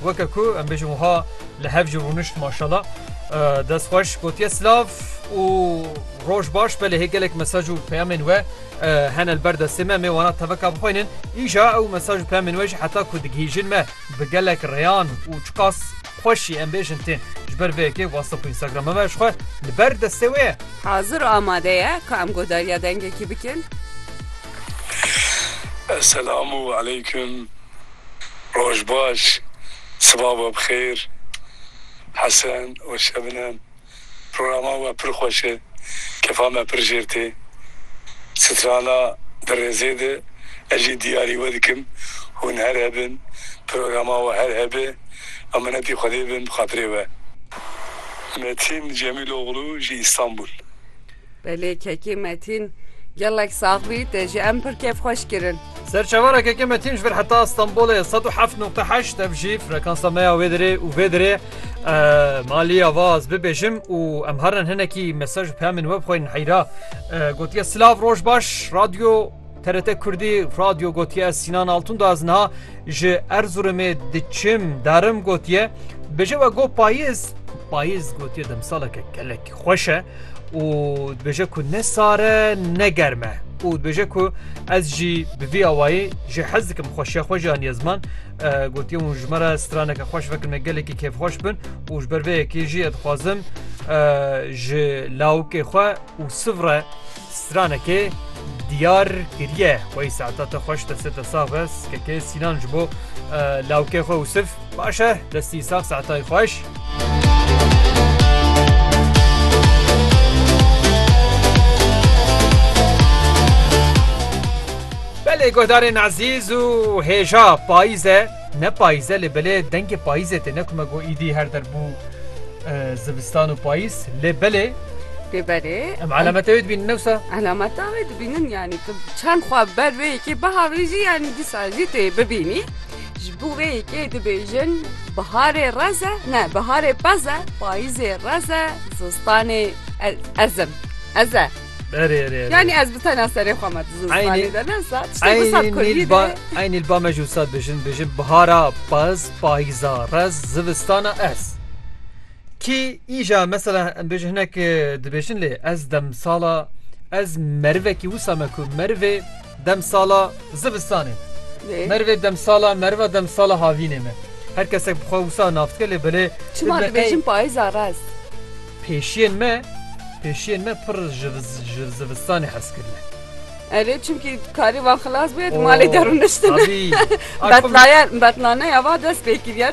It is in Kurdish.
Weke ku em bêjin wiha li hev jî rûnişt maşala. Dest xweş gotiye silav û roj baş belê hê gelek mesaj û peyamên we hene li ber destê me mê wana teveka bixwînin. Îja ew mesaj û peyamên we jî heta ku digihîjin me bi gelek rêyan û çiqas xweş jî em bêjin tên. Ji ber vê yekê whatsapp û instagrama me ji xwe li ber destê wê ye. Hazir û amade ye ku em godariya dengekî bikin. Selam û eleyküm. Roj baş, siba we bi xêr Hesen û Şebinem. Programa we pir xweş e, kefa me pir jêr tê. Strana di rêzê de ez jî diyarî we dikim hûn her hebin, programa we her hebe. Em minetî Xwedê bin bi xatirê we. Metîn Cemîloglû ji Îstanbul. Belê kekê Metîn. Gelek sax bî, te jî em pir kêfxweş kirin. Serçevarekeke metîn ji vir heta Stenbolê sed û heft nokte heşt ev jî frekansa me ya wê dirê û vê dirê maliya va ez bibêjim û em herin hinekî mesaj peyamên we bixweynin heyra gotiye silav roj baş radyo TRT Kurdî radyo gotiye Sinan Altun da ez niha ji Erzurumê diçim darim gotiye bêje we got payiz payiz gotiye demsaleke kelek Xweş e û dibêje ku ne sar e ne germ e û dibêje ku ez jî bi vî awayî jê hez dikim xweşiya xwe jî aniye ziman. Gotiye hûn ji me re straneke xweş vekin me gelekî kêfxweş bin û ji ber vê yekê jî ez dixwazim ji lawikê xwe û siv re Stranekê diyar kiriye xwe yî saeta te xweş destê te sax be skekê Sînan ji bo lawikê xwe Usif baş e destî sax saetayî xweş. Belê guhdarên ezîz û hêja payîz e. Ne payîz e lê belê dengê payîzê tê ne ku me got îdî her der bû zivistan û payîz lê belê Lê belê em elameta wê dibînin ne wisa? Elameta wê dibînin yanî tu çend xwe ber vê yekê biharî jî yanî dîsa jî tu yê bibînî ji bo vê yekê dibêjin biharê rez e ne biharê pez e payîzê rez e zistanê ezim ez e. Erê erê erê. Yani ez bi tena serê xwe me dizin Aynê- zimanê de ne sat. İşte bu sat Aynil Kurdî ba de. aynil ba me jû sat bijin bijin bihara paz payza rez zivistana ez. Ki îja mesela em bêjin hinek e, dibêjin lê ez demsala ez merivekî wisa me ku merivê demsala zivistanê me. Lê, Merivê demsala meriva demsala havînê me. Her kesek bi xwe wisa navdike lê belê Çima dibêjin payza rez. Pêşiyên me pêşiyên me pir ji ji zivistanê hez kirine. Erê çimkî karî va xilas bûye di malê de rûniştine. Betlaye betlaneya va dest pê kiriye.